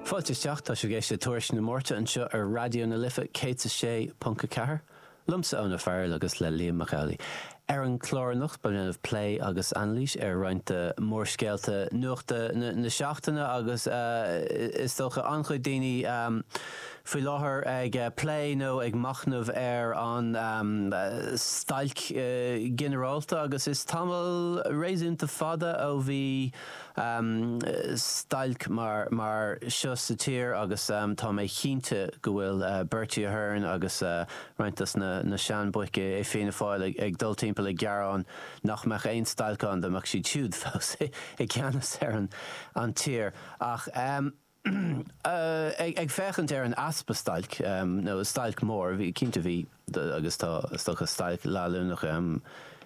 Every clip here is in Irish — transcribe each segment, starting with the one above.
Fáilte isteach, tá sibh ag éisteacht le Tuairisc na Máirte anseo ar Raidió na Life 106.4, liomsa Eoin Ó Fearghail agus le Liam Mac Amhlaigh. Ar an chlár anocht beidh muid ag déanamh plé agus anailís ar roinnt de mhórscéalta nuachta na seachtaine agus is dócha an-chuid daoine faoi láthair ag plé nó ag machnamh ar an stailc ghinearálta agus is tamall réasúnta fada ó bhí stailc mar mar seo sa tír agus tá mé cinnte go bhfuil Bertie Ahern agus roinnt dos na seanbhoic i Fianna Fáil ag dul timpeall ag gearán nach mbeadh aon stailc ann dá mbeadh siad siúd fós i gceannas ar an tír ach Ag féachaint ar an easpa stailc, nó stailc mhór, bhí, cinnte bhí agus tá is dócha stailc leanúnach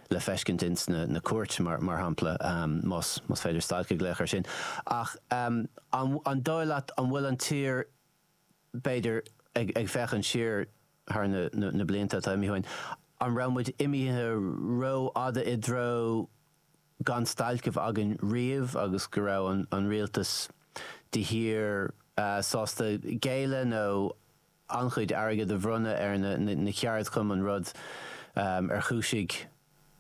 le feiscint ins na cúirteanna mar shampla, más féidir stailc a ghlaoch ar sin, ach an dóigh leat an bhfuil an tír, b'fhéidir ag féachaint siar thar na blianta atá imithe uainn, an raibh muid imithe rófhada i dtreo gan stailc a bheith againn riamh agus go raibh an Rialtas de shíor sásta géilleadh nó an-chuid airgid a bhronnadh ar na ceardchumainn, rud a chúisigh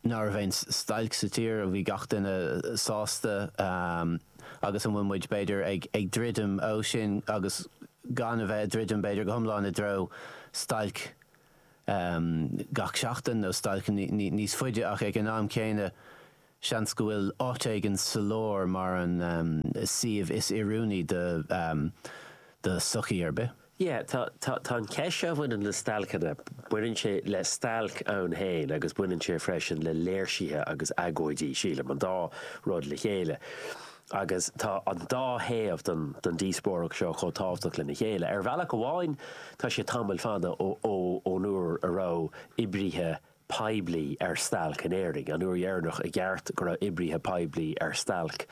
nach raibh aon stailc sa tír a bhí gach duine sásta agus an bhfuil muid, b'fhéidir, ag druidim ó sin agus gan a bheith ag druidim, b'fhéidir, go hiomlán i dtreo stailc gach seachtain nó stailc níos faide ach ag an am céanna seans go bhfuil áit éigin sa lár mar an suíomh is oiriúnaí do shochaí ar bith. Yeah, tá, tá, tá an cheist seo a bhaineann le stailceanna, baineann sé le stailc ann féin agus baineann sé freisin le léirsithe agus agóidí, sílim, an dá rud le chéile. agus tá an dá thaobh den díospóireacht seo chomh tábhachtach lena chéile. Ar bhealach amháin, tá sé tamall fada ón uair a raibh oibrithe poiblí ar stailc in Éirinn, an uair dheireanach i gceart go raibh oibrithe poiblí ar stailc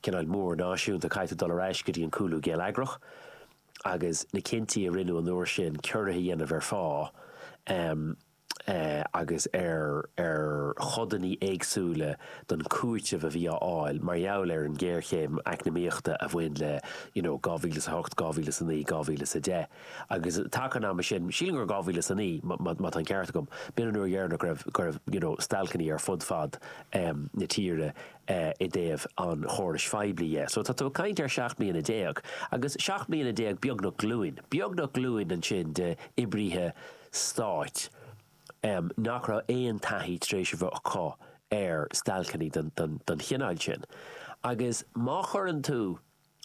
cineál mór náisiúnta, caithfidh tú dul ar ais go dtí an cúlú geilleagrach agus na cinntí a rinneadh an uair sin ciorruithe a dhéanamh ar phá, agus ar chodanna éagsúla den chúiteamh a bhí á fháil mar gheall ar an ghéarchéim eacnamaíochta a bhain le you know 2008, 2009, 2010 agus taca an ama sin, sílim gur 2009 má tá an ceart agam, b'in an uair dheireanach go raibh go raibh you know stailceanna ar fud fad na tíre i dtaobh an chórais phoiblí dhe. So tá tú ag caint ar sheacht mbliana déag agus seacht mbliana déag beagnach glúin, beagnach glúin ansin d'oibrithe, stáit, nach raibh aon taithí tar éis a bheith acu ar stailceanna den chineál sin. Agus má chuireann tú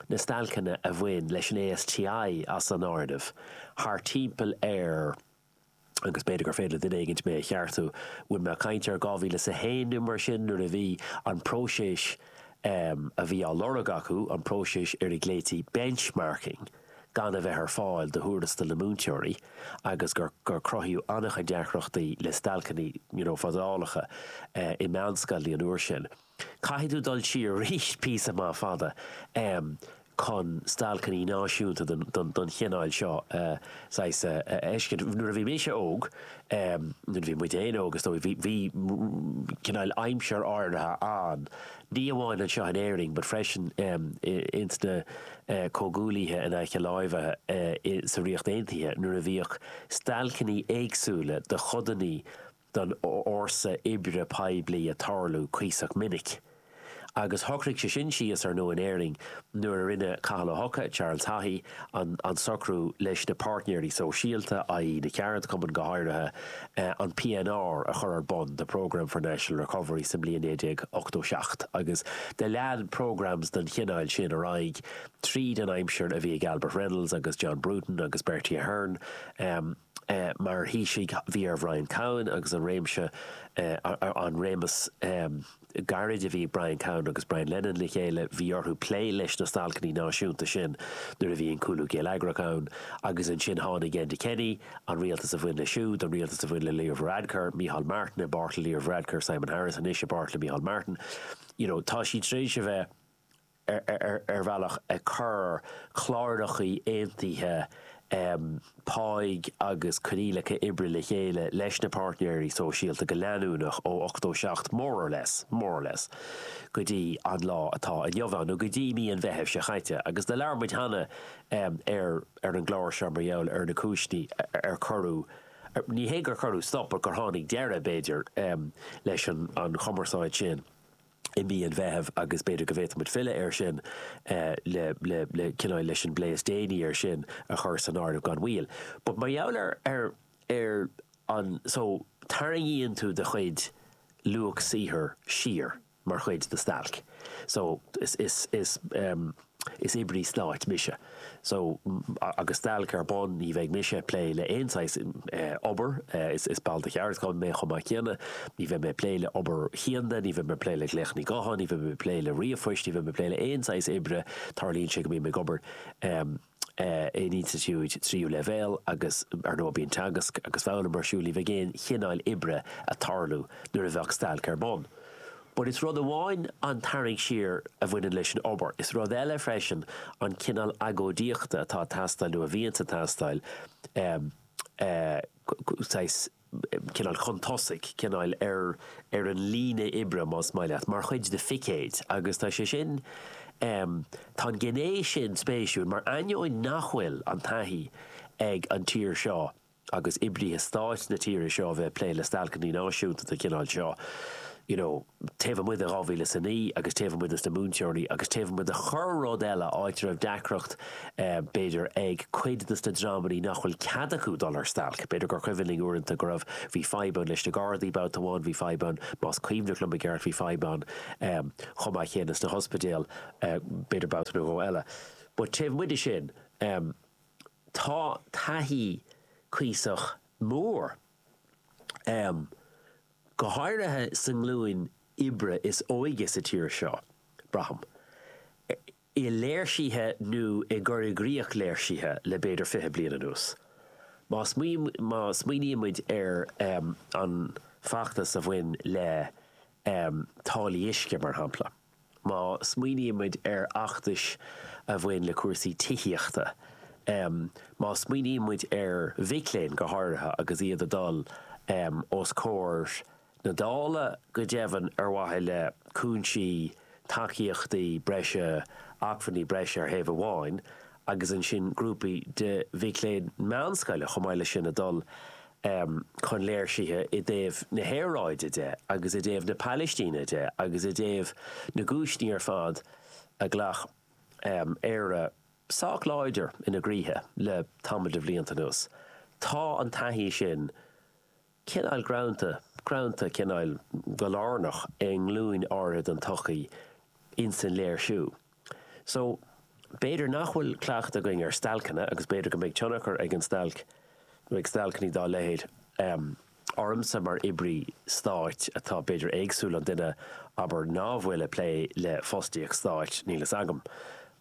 na stailceanna a bhain leis an ASTI as an áireamh, thart timpeall ar, agus b'fhéidir gur féidir le duine éigin mé a cheartú, bhfuil mé ag caint ar 2001 nó mar sin nuair a bhí an próiseas a bhí á lorg acu, an próiseas ar a ghlaoití 'benchmarking', gan a bheith ar fáil do thuarastail na múinteoirí agus gur cruthaíodh an-chuid deacrachtaí le stailceanna, you know, fadálacha i meánscoileanna an uair sin. Caithfidh tú dul siar arís píosa maith fada em chun stailceanna náisiúnta den den chineál seo a saghas a fheiscint. Nuair a bhí mise óg em nuair a bhí muid féin óg is dóigh bhí bhí cineál aimsir áirithe ann, ní amháin anseo in Éirinn but freisin ins na comhghuaillithe in aice láimhe sa Ríocht Aontaithe nuair a bhíodh stailceannaí éagsúla do chodannaí don fhórsa oibre poiblí a' tarlú cuíosach minic agus shocraigh sé sin síos. Ar ndóigh in Éirinn nuair a rinne Cathal Ó hEochaidh, Charles Haughey, an socrú leis na páirtnéirí sóisialta, i.e. na ceardchumainn, go háirithe, an PNR a chur ar bun, The Programme for National Recovery, sa mbliain 1987 agus do lean programs den chineál sin ar aghaidh tríd an aimsir a bhí ag Albert Reynolds agus John Bruton agus Bertie Ahern. Mar Thaoisigh, bhí ar Bhrian Cowen agus an réimse, an réimeas gairid a bhí ag Brian Cowen agus Brian Lenihan le chéile, bhí orthu plé leis na stailceanna náisiúnta sin nuair a bhí an cúlú geilleagrach ann. Agus ansin tháinig Enda Kenny, an rialtas a bhain leis siúd, an rialtas a bhain le Leo Varadkar, Micheál Martin, i bpáirt le Leo Varadkar, Simon Harris anois, i bpáirt le Micheál Martin. You know, tá siad tar éis a bheith ar bhealach ag cur clárachaí aontaithe páigh agus coinníollacha oibre le chéile leis na páirtnéirí sóisialta go leanúnach ó 87, more or less, more or less, go dtí an lá atá inniu ann, nó go dtí mí an Mheithimh seo chaite. Agus do labhair muid cheana ar an gclár seo mar gheall ar na cúiseanna ar cuireadh, ní hé gur cuireadh stop, but gur tháinig deireadh, b'fhéidir, leis an chumarsáid sin. i mí an Mheithimh agus b'fhéidir go bhféadfaimid filleadh air sin le cineál leis an bplé is déanaí air sin a chur san áireamh gan mhoill. But mar gheall ar ar ar an so tarraingíonn tú do chuid luach saothair siar mar chuid de stailc so is is is. is oibrí stáit mise so agus stailc ar bun ní bheidh mise ag plé le aon saghas obair is ball de cheardchumann mé chomh maith céanna ní bheidh mé ag plé le obair chianda ní bheidh mé ag plé le glaochanna gutháin ní bheidh mé ag plé le ríomhphoist ní bheidh mé ag plé le aon saghas oibre tarlaíonn sé go mbím ag obair in institiúid tríú leibhéal agus ar ndóigh bíonn teagasc agus foghlaim ar siúl ní bheidh aon chineáil oibre ag tarlú nuair a bheidh stailc ar bun. But is rud amháin an tarraingt siar a bhaineann leis an obair, is rud eile freisin an cineál agóidíochta atá ag teastáil nó a bhíonns ag teastáil, saghas, cineál chun tosaigh, cineál ar ar an líne oibre, más maith leat, mar chuid de phicéid agus tá sé sin, tá an gné sin spéisiúil mar ainneoin nach bhfuil an taithí ag an tír seo agus oibrithe stáit na tíre seo a bheith ag plé le stailceanna náisiúnta den chineál seo, you know, taobh amuigh de dhá mhíle is a naoi agus taobh amuigh dos na múinteoirí agus taobh amuigh de chorr-rud eile, áit a raibh deacracht b'fhéidir ag cuid dos na dreamannaí nach bhfuil cead acu dul ar stailc. B'fhéidir gur cuimhin linn uaireanta go raibh, bhí fadhb ann leis na gardaí babhta amháin, bhí fadhb ann, más cuimhneach liom i gceart, bhí fadhb ann chomh maith céanna sna hospidéil b'fhéidir babhta nó dhó eile. But taobh amuigh de sin, Tá taithí cuíosach mór, go háirithe sa nglúin oibre is óige sa tír seo, braithim, i léirsithe nó i gcur i gcrích léirsithe le b'fhéidir fiche bliain anuas. Má smaoinímid ar an bhfeachtas a bhain le táillí uisce, mar shampla, Má smaoinímid ar fheachtais a bhain le cúrsaí tithíochta, má smaoinímid ar mhic léinn go háirithe agus iad ag dul os comhair na Dála, go deimhin, ar mhaithe le cúinsí, tacaíochtaí breise, acmhainní breise ar thaobh amháin agus ansin grúpaí de mhic léinn meánscoile chomh maith leis sin ag dul chun léirsithe i dtaobh na haeráide de agus i dtaobh na Palaistíne de agus i dtaobh na gcúiseanna ar fad a ghlac áit sách láidir ina gcroíthe le tamall de bhlianta anuas. Tá an taithí sin. Cineál greanta, greanta, cineál go lárnach i nglúin áirithe den tsochaí ins an léirsiú, so. B'fhéidir nach bhfuil cleachtadh againn ar stailceanna agus b'fhéidir go mbeidh tionchar ag an stailc, nó ag stailceanna dá leithéid, ormsa mar oibrí stáit atá b'fhéidir éagsúil ón duine, abair, ná bhfuil ag plé le fostaíocht stáit, níl fhios agam,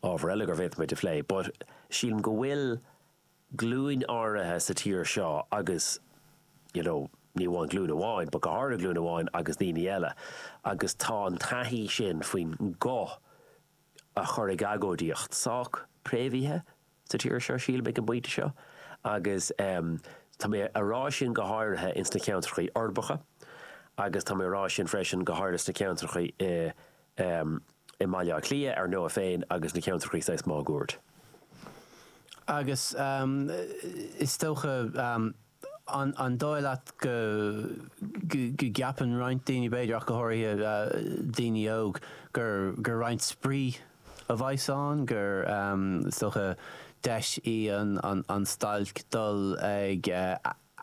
ábhar eile gur bhféadfaimis a phlé, but sílim go bhfuil. glúin áirithe sa tír seo agus you know ní amháin glúin amháin but go háirithe glúin amháin agus daoine eile agus tá an taithí sin faoin nguth a chur ag agóidíocht sách préamhaithe sa tír seo sílim ag an bpointe seo agus em tá mé a rá sin go háirithe ins na ceantrachaí uirbeacha agus tá mé a rá sin freisin go háirithe sna ceantrachaí i i mBaile Átha Cliath, ar ndóigh, féin agus na ceantrachaí saghas máguaird. Agus is dócha, an dóigh leat, go gceapann roinnt daoine, b'fhéidir, ach go háirithe daoine óg, gur roinnt spraoi a bheidh san áireamh, gur, is dócha, deis í an stailc dul ag.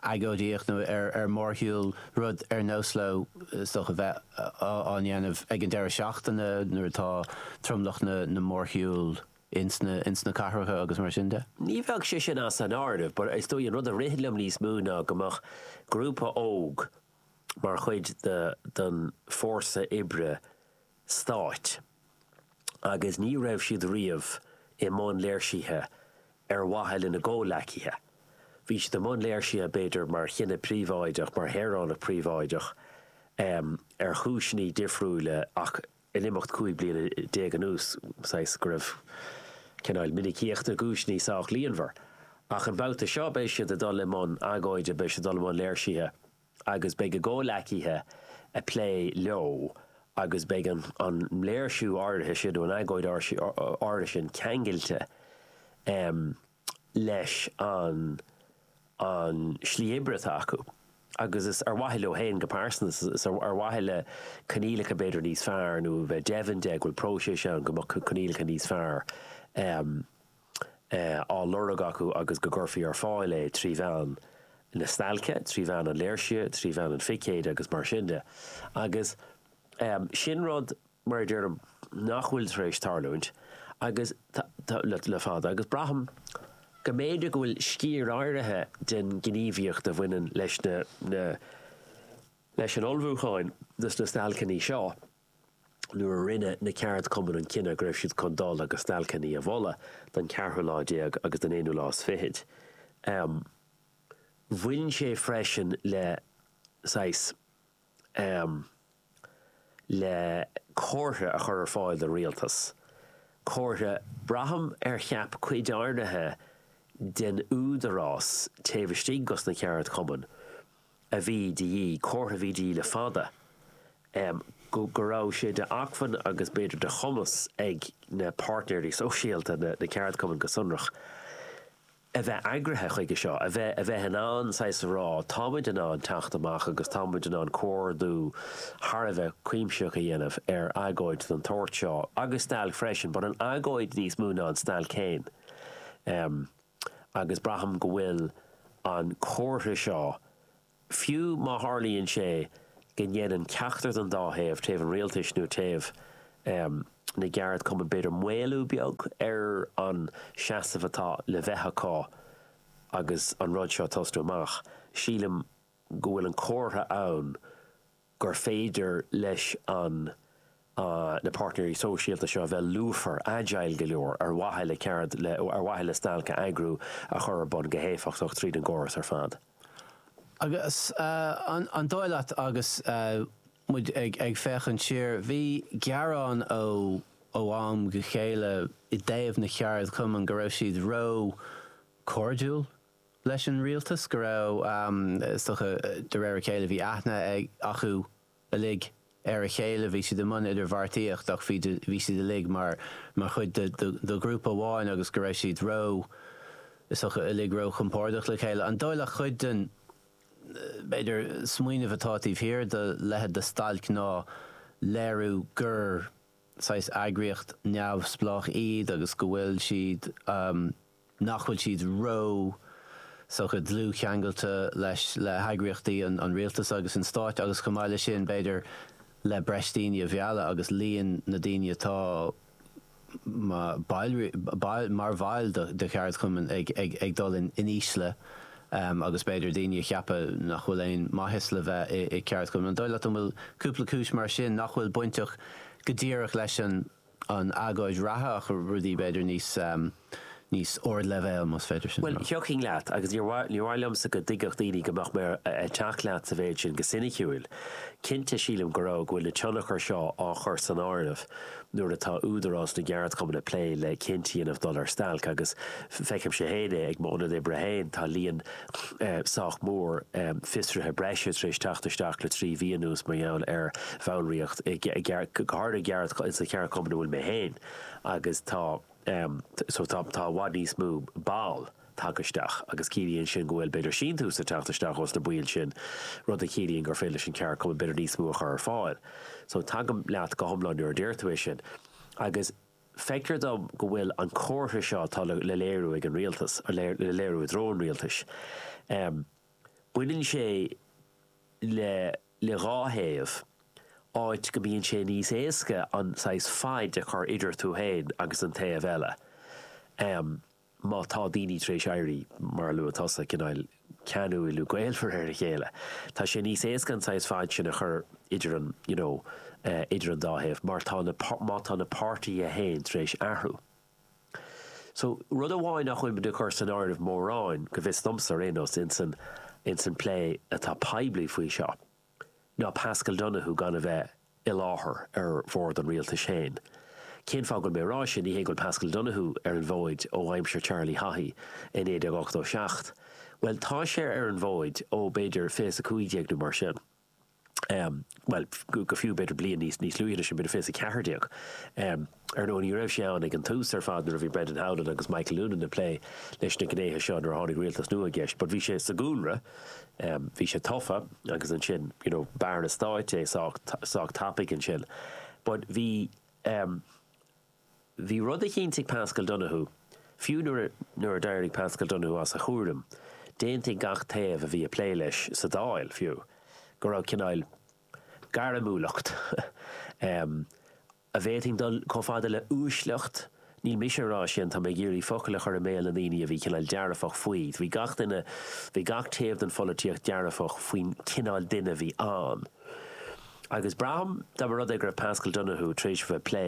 agóidíocht nó ar mhórshiúl, rud ar nós leo is dócha a bheith á dhéanamh ag an deireadh seachtaine nuair atá tromlach na mórshiúl insa ins na cathracha agus mar sin de. Ní bheadh sé sin as an áireamh but is dóigh an rud a ritheann liom níos mó ná go mbeadh grúpa óg mar chuid den don fórsa oibre stáit, agus ní raibh siad riamh i mbun léirsithe ar mhaithe lena gcomhleacaithe. Bhí siad i mbun léirsithe, b'fhéidir, mar dhuine príobháideach, mar shaoránach príobháideach, ar chúiseanna difriúla, ach in imeacht cúig bliana déag anuas, saghas, go raibh cineál minicíocht na gcúiseanna sách líonmhar. Ach an babhta seo, beidh siad ag dul i mbun agóide, beidh siad ag dul i mbun léirsithe. agus beidh a gcomhleacaithe ag plé leo agus beidh an léirsiú áirithe sin nó an agóid áirithe sin ceangailte leis an slí oibre atá acu agus is ar mhaithe leo féin go pearsanta, is ar mhaithe le coinníollacha b'fhéidir níos fearr nó a bheith deimhin de go bhfuil próiseas ann go mbeadh coinníollacha níos fearr. á lorg acu agus go gcuirfí ar fáil é trí mheán na stailce, trí mheán an léirsithe, trí mheán an phicéid agus mar sin de. Agus sin rud, mar a deirim, nach bhfuil tar éis tarlúint agus le fada agus braithim go mb'fhéidir go bhfuil sciar áirithe den ghníomhaíocht a bhaineann le leis an ullmhúchán dos na stailceanna seo, nuair a rinne na ceardchumainn an cinneadh go raibh siad chun dul agus stailceanna a mholadh don cheathrú lá déag agus don aonú lá is fichid. Bhain sé freisin le saghas le comhartha a chur ar fáil don rialtas, comhartha, braithim, ar cheap cuid áirithe den údarás taobh istigh des na ceardchumainn. a bhí de dhíth comhartha a bhí de dhíth le fada, go raibh sé d'acmhainn agus b'fhéidir de chumas ag na páirtnéirí sóisialta, na ceardchumainn go sonrach, a bheith eagraithe chuige seo, a bheith in ann saghas a rá, táimid in ann teacht amach agus táimid in ann comhordú thar a bheith cuimsitheach a dhéanamh ar agóid den tsórt seo agus stailc freisin, but an agóid níos mó ná an stailc féin. agus braithim go bhfuil an comhartha seo, fiú má tharlaíonn sé go ndéanann ceachtar den dá thaobh, taobh an rialtais nó taobh na gceardchumann, b'fhéidir, maolú beag ar an seasamh atá le bheith acu agus an rud seo ag tosnú amach, sílim go bhfuil an comhartha ann gur féidir leis an na páirtnéirí sóisialta seo a bheith lúfar, agile go leor ar mhaithe le ceard le ar mhaithe le stailc a eagrú a chur ar bun go héifeachtach tríd an gcóras ar fad. Agus an dóigh leat agus muid ag féachaint siar, bhí gearáin ó ó am go chéile i dtaobh na gceardchumann go raibh siad ró cairdiúil, leis an rialtas go raibh, is dócha, de réir a chéile, bhí aithne acu uilig ar a chéile, bhí siad i mbun idirbheartaíocht ach bhí bhí siad uilig mar mar chuid de ghrúpa amháin agus go raibh siad ró, is dócha, uilig ró-chompordach le chéile. An dóigh leat cuid den, b'fhéidir, smaoineamh atá taobh thiar de leithéid de stailc ná léiriú gur saghas eagraíocht neamhspleách iad agus go bhfuil siad, nach bhfuil siad ró, is dócha, dlúthcheangailte leis, le heagraíochtaí an an Rialtais agus an Stáit agus chomh maith le sin, b'fhéidir, le breis daoine a mhealladh agus líon na daoine atá ma baill baill, mar bhaill do do cheardchumann ag ag ag dul in in ísle em agus b'fhéidir daoine a cheapadh nach bhfuil aon maitheas le bheith i i gceardchumann. An dóigh leat an bhfuil cúpla cúis mar sin nach bhfuil bainteach go díreach leis an an agóid reatha ach rudaí b'fhéidir níos, níos ardleibhéal más féidir sin a rá. Bhuel, thiocfainn leat agus níor mhaith, níor mhaith liomsa go dtuigfeadh daoine go mbeadh mé ar, ag teacht leat sa mhéid sin, go soiniciúil. Cinnte sílim go raibh, go bhfuil na tionchair seo á chur san áireamh nuair atá Údarás na gCeardchumann ag plé le cinntí a dhéanamh dul ar stailc agus feicimse féin é ag m'ionad oibre féin, tá líon sách mór fiosruithe breise tar éis teacht isteach le trí mhí anuas mar gheall ar bhallraíocht go háirithe sa cheardchumann ina bhfuil mé féin agus tá so tá tá i bhfad níos mó ball tagtha isteach agus ciallaíonn sin go bhfuil b'fhéidir síntiús ag teacht isteach ós na baill sin rud a chiallaíonn gur féidir leis an ceardchumann b'fhéidir níos mó a chur ar fáil so tagaim leat go hiomlán nuair a deir tú é sin agus Feictear dom go bhfuil an comhartha seo atá le léiriú ag an Rialtas, le léiriú i dtreo an Rialtais, baineann sé le dhá thaobh, áit go mbíonn sé níos éasca an saghas faid a chur idir tú féin agus an taobh eile. má tá daoine tar éis éirí, mar a luaigh tusa, cineál ceanúil nó gaolmhar ar a chéile, tá sé níos éasca an saghas faid sin a chur idir an, you know, eh, idir an dá thaobh mar tá na, má tá na páirtithe fhéin tar éis athrú. So, rud amháin nach bhfuilim ag cur san áireamh mórán, go bhfios domsa ar aon nós, insan, insan plé atá poiblí faoi seo, ná Paschal Donohoe gan a bheith i láthair ar bhord an rialtais féin. Cén fáth go bhfuil mé ag rá sin? Ní hé go bhfuil Paschal Donohoe ar an bhfóid ó aimsir Charlie Haughey i 1987. Bhuel, tá sé ar an bhfóid ó b'fhéidir 2015 nó mar sin. Bhuel, go fiú b'fhéidir bliain níos luaithe ná sin, b'fhéidir 2014. Ar ndóigh, ní raibh sé ann ag an tús ar fad nuair a bhí Brendan Howlin agus Michael Noonan ag plé leis na gnéithe seo nuair a tháinig rialtas nua i gceist but bhí sé sa gcúlra, bhí sé tofa agus ansin you know b'Aire Stáit é sách tapaidh ansin but bhí bhí rud a chinntigh Paschal Donohoe fiú nuair a nuair a d'éirigh Paschal Donohoe as a chúram d'aontaigh gach taobh a bhí ag plé leis sa Dáil fiú go raibh cineál gairmiúlacht an bhféadfainn dul chomh fada le 'uaisleacht', níl mise a rá sin, tá mé ag iarraidh focail a chur i mbéal na ndaoine a bhí cineál dearfach faoi, bhí gach duine, bhí gach taobh den pholaitíocht dearfach faoin chineál duine a bhí ann. Agus braithim, dá mba rud é go raibh Paschal Donohoe tar éis a bheith ag plé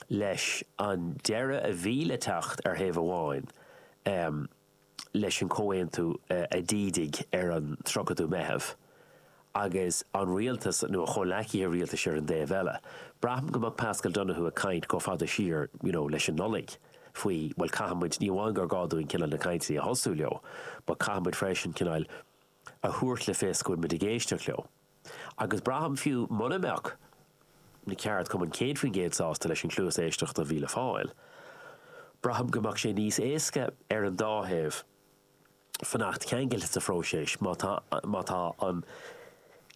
leis an deireadh a bhí le teacht ar thaobh amháin, leis an chomhaontú a d'ídigh ar an 30ú Meitheamh, agus an rialtas, nó a chomhleacaithe rialtais ar an dtaobh eile. Braithim go mbeadh Paschal Donohoe ag caint chomh fada siar, you know, leis an Nollaig, faoi, bhuel, caithfidh muid, ní amháin gur gá dúinn cineál na cainteanna a thosú leo, but caithfidh muid freisin cineál a thabhairt le fios go bhfuil muid ag éisteacht leo. Agus braithim fiú mura mbeadh na ceardchumainn 100% sásta leis an chluas éisteachta a bhí le fáil, braithim go mbeadh sé níos éasca ar an dá thaobh fanacht ceangailte sa phróiseas má tá, má tá an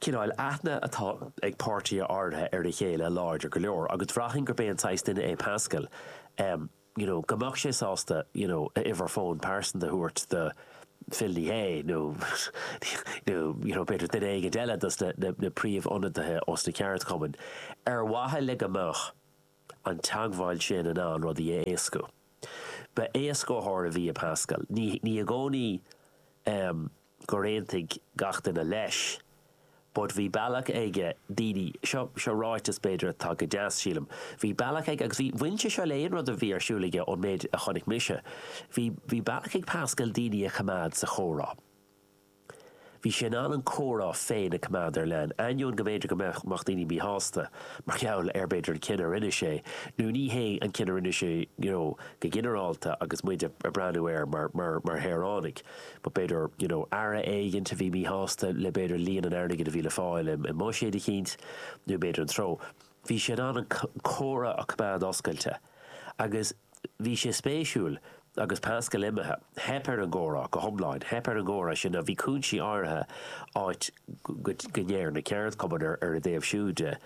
cineál aithne atá ag páirtithe áirithe ar a chéile láidir go leor. Agus bhraithfinn gurb é an saghas duine é Paschal a you know go mbeadh sé sásta you know a uimhir fóin pearsanta a thabhairt do Phil Ní Sheaghdha nó nó you know b'fhéidir duine éigin eile dos na na na príomh-ionadaithe os na ceardchumainn ar mhaithe le go mbeadh an teagmháil sin in ann rudaí a éascú. Ba éascaitheoir a bhí i Paschal. Ní ní i gcónaí eh gur aontaigh gach duine leis but bhí bealach aige daoine, seo, seo ráiteas b'fhéidir atá go deas sílim, bhí bealach aige agus bhí, bhain sé seo le aon rud a bhí ar siúl aige ón méid a chonaic mise, bhí, bhí bealach ag Paschal daoine a choimeád sa chomhrá. Bhí sé in ann an comhrá féin a choimeád ar leanúint, ainneoin go mb'fhéidir go mbeadh, mbeadh daoine míshásta mar gheall ar b'fhéidir an cinneadh a rinne sé nó ní hé an cinneadh a rinne sé you know go ginearálta agus muid a' breathnú air mar, mar, mar shaoránaigh. but b'fhéidir you know aire éigint a bhí míshásta le b'fhéidir líon an airgid a bhí le fáil i mbuiséad eicínt nó b'fhéidir an treo. Bhí sé in ann an comhrá a choimeád oscailte agus bhí sé spéisiúil agus Paschal imithe, theip ar an gcomhrá go hiomlán, theip ar an gcomhrá sin. Bhí cúinsí áirithe áit go ndeir na ceardchumainn ar a dtaobh siúd de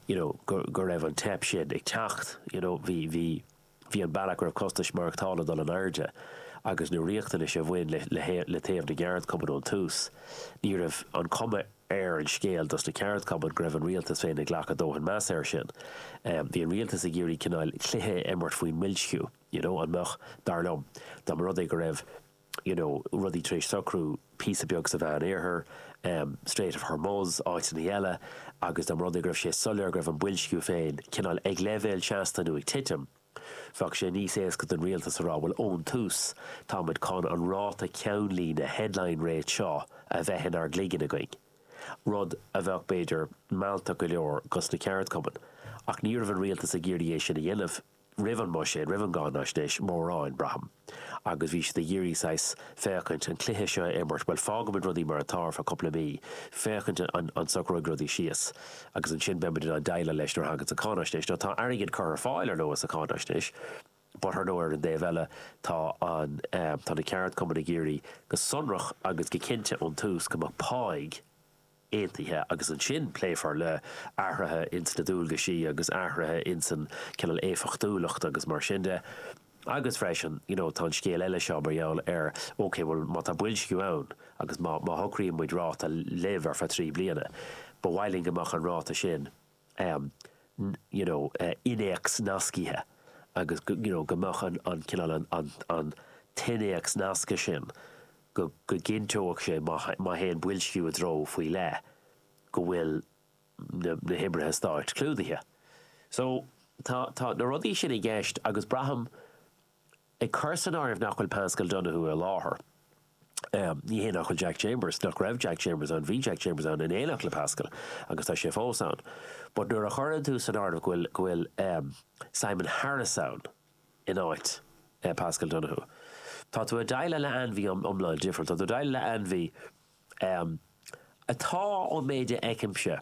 you know go raibh an teip sin ag teacht you know bhí Bhí an bealach go raibh costais mhaireachtála ag dul in airde agus na riachtanais a bhain le taobh na gceardchumann ón tús. Ní raibh an chuma ar an scéal dos na ceardchumainn go raibh an rialtas féin ag glacadh dóthain measa air sin. Bhí an rialtas ag iarraidh cineál cluiche a imirt faoin mboilsciú, you know, an mbeadh, dar liom, dá mba rud é go raibh, you know rudaí tar éis socrú píosa beag sa Mheánoirthear, em Strait of Hormuz, áiteannaí eile agus dá mba rud é go raibh sé soiléir go raibh an boilsciú féin cineál ag leibhéal seasta nó ag titim, bheadh sé níos éasca don rialtas a rá bhuel ón tús tá muid chun an ráta ceannlíne, headline rate, seo a bheith inár gcloigeann againn. Rud a bheadh b'fhéidir mealltach go leor dos na ceardchumainn ach ní raibh an rialtas ag iarraidh é sin a dhéanamh, roimh an mBuiséad, roimh an gCáinaisnéis mórán, braithim, agus bhí siad ag iarraidh saghas féachaint an cluiche seo a imirt, bhuel, fágaimid rudaí mar atá ar feadh cúpla mí, féachaint an socróidh rudaí síos, agus ansin beimid in ann déileáil leis nuair a thagann sé sa Cháinaisnéis. Now tá airgead curtha ar fáil, ar ndóigh, sa Cháinaisnéis, but ar ndóigh, ar an dtaobh eile, tá an, tá na ceardchumainn ag iarraidh go sonrach agus go cinnte ón tús go mbeadh pá, aontaithe agus ansin pléifear le athruithe ins na dualgaisí agus athruithe ins an cineál éifeachtúlacht agus mar sin de. Agus freisin, you know, tá an scéal eile seo mar gheall ar, okay, bhuel, má tá boilsciú ann agus má shocraíonn muid ráta libh ar feadh trí bliana, ba mhaith linn go mbeadh an ráta sin, you know, innéacs nascaithe agus go, you know, go mbeadh an, an cineál an, an, an t-innéacs nasctha sin, go, go gcinnteodh sé má, má théann boilsciú i dtreo faoi leith go bhfuil na, na hoibrithe stáit clúdaithe. So, tá, tá na rudaí sin i gceist agus braithim Ag cur san áireamh nach bhfuil Paschal Donohoe i láthair, ní hé nach bhfuil Jack Chambers, nach raibh Jack Chambers ann, bhí Jack Chambers ann in éineacht le Paschal agus tá sé fós ann, but nuair a chuireann tú san áireamh go bhfuil, go bhfuil Simon Harris ann in áit Paschal Donohoe, tá tú ag déileáil le ainmhí iomlán different, tá tú ag déileáil le ainmhí atá, ón méid a fheicimse,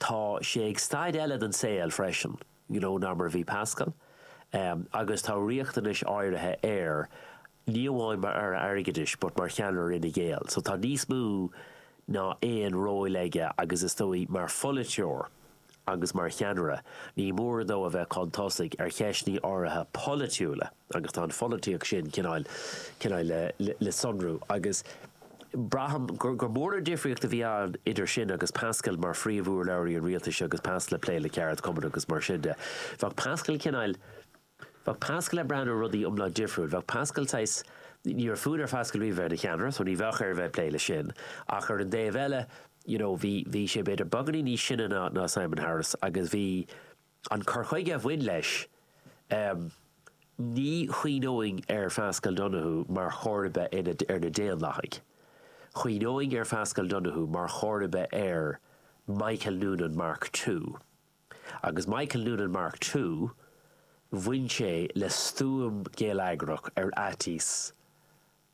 Tá sé ag staid eile den saol freisin ná mar a bhí Paschal agus tá riachtanais áirithe air, ní amháin mar Aire Airgeadais but mar cheannaire Fhine Gael. So tá níos mó ná aon róil aige agus is dóigh mar pholaiteoir agus mar cheannaire, ní mór dó a bheith chun tosaigh ar cheisteanna áirithe polaitiúla. agus tá an pholaitíocht sin, cineál, cineál le sonrú agus braithim gur, gur mór an difríocht a bhí ann idir sin agus Paschal mar phríomhurlabhraí an rialtais agus Paschal ag plé le ceardchumainn agus mar sin de. Bheadh Paschal cineál, bheadh Paschal ag breathnú ar rudaí iomlán difriúil, bheadh Paschal saghas, ní raibh fonn ar Phaschal riamh a bheith ina cheannaire so ní bheadh air a bheith ag plé leis sin ach ar an dtaobh eile you know bhí, bhí sé b'fhéidir beagáinín níos sine ná, ná Simon Harris agus bhí, an cur chuige a bhain leis, ní chuimhneoinn ar Phaschal Donohoe mar chomharba ar na Daonlathaigh. Chuimhneoinn ar Phaschal Donohoe mar chomharba ar Michael Noonan Mark Two. Agus Michael Noonan Mark Two, bhain sé le stuaim gheilleagrach ar fhaitíos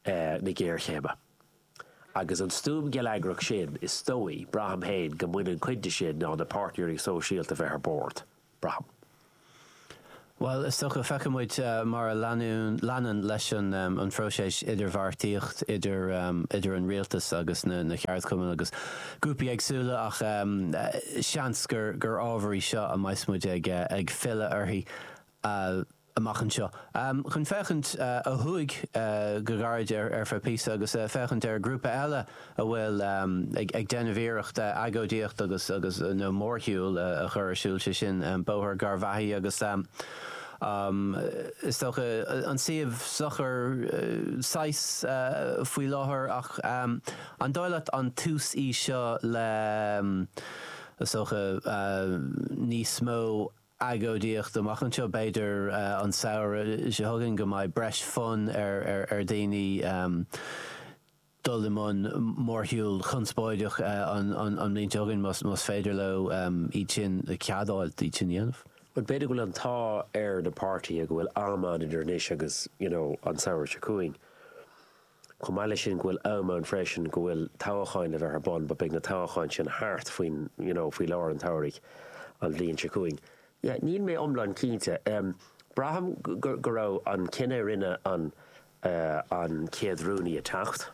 na géarchéime. Agus an stuaim gheilleagrach sin, is dóigh, braithim féin, go mbaineann cuid de sin ná na páirtnéirí sóisialta a bheith ar bord. Braithim. Bhuel, is dócha, feicfidh muid mar a leanann leis an phróiseas idirbheartaíocht idir idir an rialtas agus na ceardchumainn agus grúpaí éagsúla ach seans gur ábhar í seo a mbeidh muid ag filleadh uirthi amach anseo. Chun féachaint ó thuaidh go gairid ar feadh píosa agus féachaint ar ghrúpa eile a bhfuil ag déanamh iarrachta agóidíocht agus, nó mórshiúl a chur ar siúl, sé sin Bóthar Garvaghy agus is dócha an suíomh socair saghas faoi láthair ach an dóigh leat an tús í seo le is dócha níos mó. agóidíocht amach anseo, b'fhéidir an samhradh seo chugainn, go mbeidh breis fonn ar dhaoine dul i mbun mórshiúl chonspóideach an mbliain seo chugainn, más féidir leo iad sin a cheadáil, iad sin a dhéanamh. Bhuel, b'fhéidir go bhfuil an t-ádh ar na páirtithe go bhfuil am ann idir anois agus, you know, an samhradh seo chugainn. Chomh maith leis sin go bhfuil am ann freisin go bhfuil toghacháin le bheith ar bun but beidh na toghacháin sin thart faoin you know faoi lár an tsamhraidh an bhliain seo chugainn. Yeah níl mé iomlán cinnte. Braithim go go raibh an cinneadh a rinne an eh an chéad rúnaí ag teacht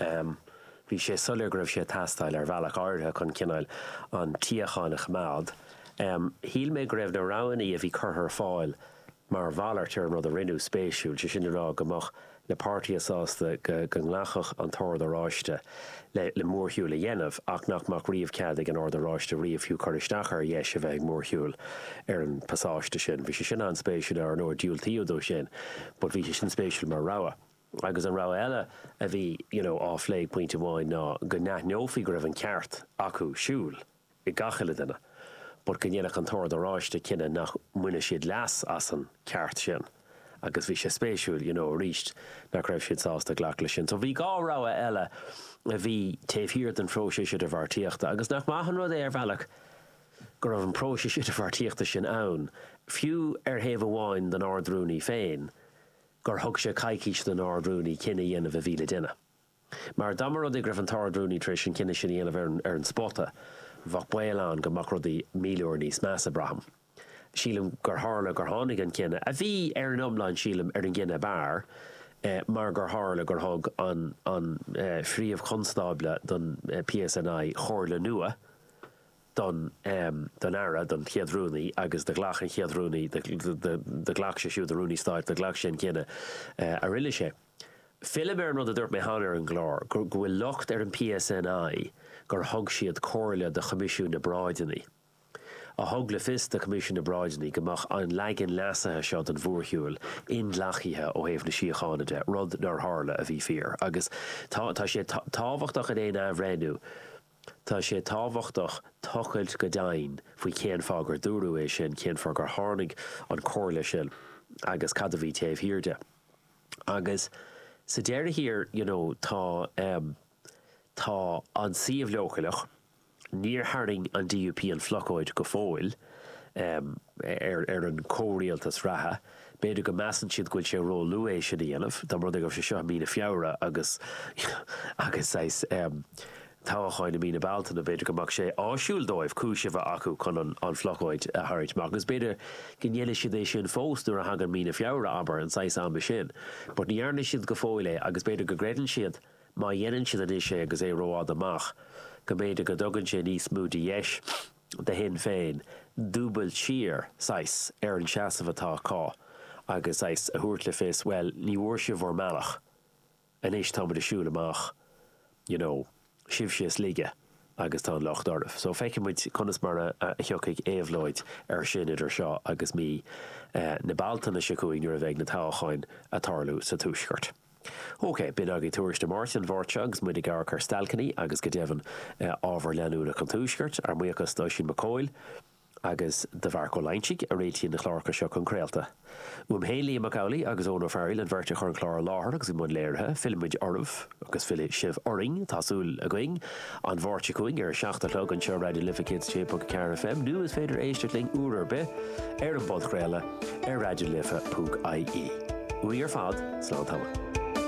em bhí sé soiléir go raibh sé ag teastáil ar bhealach áirithe chun cineál an tsíocháin a choimeád. Em shíl mé go raibh na roghannaí a bhí curtha ar fáil mar mhalairt ar an rud a rinneadh, spéisiúil, sé sin le rá go mbeadh na páirtithe sásta go nglacfadh an tOrd Oráiste le mórshiúil a dhéanamh ach nach mbeadh riamh cead ag an Ord Oráiste riamh fiú cur isteach ar dheis a bheith ag mórshiúil ar an bpasáiste sin. Bhí sé sin an-spéisiúil, ar ndóigh diúltaíodh dó sin but bhí sé sin spéisiúil mar rogha. Agus an rogha eile a bhí you know á phlé ag pointe amháin ná go n-aithneofaí go raibh an ceart acu siúl a ag gach uile duine, but go ndéanfadh an tOrd Oráiste cinneadh nach mbaineadh siad leas as an ceart sin agus bhí sé spéisiúil, you know, arís nach raibh siad sásta glacadh leis sin. So bhí dhá rogha eile a bhí taobh thiar den phróiseas idirbheartaíochta agus nach maith an rud é ar bhealach go raibh an próiseas idirbheartaíochta sin ann, fiú ar thaobh amháin don Ard-Rúnaí féin, gur thug sé coicís don Ard-Rúnaí cinneadh a dhéanamh a bhí le déanamh. Mar dá mba rud é go raibh an tArd-Rúnaí tar éis an cinneadh sin a dhéanamh ar an ar an spota, bheadh baol ann go mbeadh rudaí míle uair níos measa, braithim. Sílim gur tharla gur tháinig an cinneadh, a bhí, ar an iomlán sílim, ar an gcinneadh ab fhearr, mar gur tharla gur thug an an Phríomh-Chonstábla don PSNI comhairle nua don don Aire, don Chéad Rúnaí, agus do ghlac an Chéad Rúnaí, do ghlac sé siúd, an Rúnaí Stáit, do ghlac sé an cinneadh a rinne sé. Fillim ar an rud a dúirt mé cheana ar an gclár, go bhfuil locht ar an PSNI gur thug siad comhairle do Choimisiún na bParáideanna, a thug le fios do Choimisiún na bParáideanna go mbeadh an leagan leasaithe seo den mhórshiúil inghlactha ó thaobh na síochána de, rud nár tharla, a bhí fíor. Agus tá sé tábhachtach in aon athbhreithniú, tá sé tábhachtach tochailt go doimhin faoi cén fáth gur dúradh é sin, cén fáth gur tháinig an comhairle sin agus cad a bhí taobh thiar de. Agus sa deireadh thiar, you know, tá ehm, tá an suíomh leochaileach, níor tharraing an DUP an phlocóid go fóill, ehm, ar, ar an chomhrialtas reatha, b'fhéidir go measann siad go bhfuil sé róluath é sin a dhéanamh, dá mba rud é go raibh sé seo i mí na Feabhra agus, agus saghas, ehm, toghacháin i mí na Bealtaine, b'fhéidir go mbeadh sé áisiúil dóibh cúis a bheith acu chun an phlocóid a tharraingt amach, agus b'fhéidir go ndéanfaidh siad é sin fós nuair a thagann mí na Feabhra, abair, an saghas ama sin. But ní dhearna siad go fóill é, agus b'fhéidir go gcreideann siad má dhéanann siad anois é agus é rófhada amach, go mb'fhéidir go dtugann sé níos mó de dheis do Shinn Féin dúbailt síos, saghas, ar an seasamh atá acu agus, saghas, a thabhairt le fios, bhuel, ní bhfuair sibh bhur mbealach. Anois táimid ag siúil amach, you know, sibhse ós láige agus tá an locht oraibh. So feicfidh muid conas mar a thiocfaidh éabhlóid air sin idir seo agus mí na Bealtaine seo chugainn nuair a bheidh na toghcháin a' tarlú sa Tuaisceart. OK, b'in agaibh Tuairisc na Máirte an Mháirt seo agus muid ag amharc ar stailceannaí agus go deimhin ábhar leanúnach an Tuaiscirt, ár mbuíochas d'Oisín Mac Cóil. agus do Mharc Ó Loingsigh a réitíonn na cláracha seo chun craolta. Uaim féin, Liam Mac Amhlaigh agus Eoin Ó Fearghaíl an bheirt a chuir an clár i láthair agus i mbun léirithe. Fillfimid oraibh agus fillfidh sibh orainn, tá súil againn, an Mháirt seo chugainn ar a seacht a chlog anseo ar Raidió Life 106.4 FM nó is féidir éisteacht linn uair ar bith ar an bpodchraoladh ar raidiolife.ie. Uainn ar fad, slán tamaill.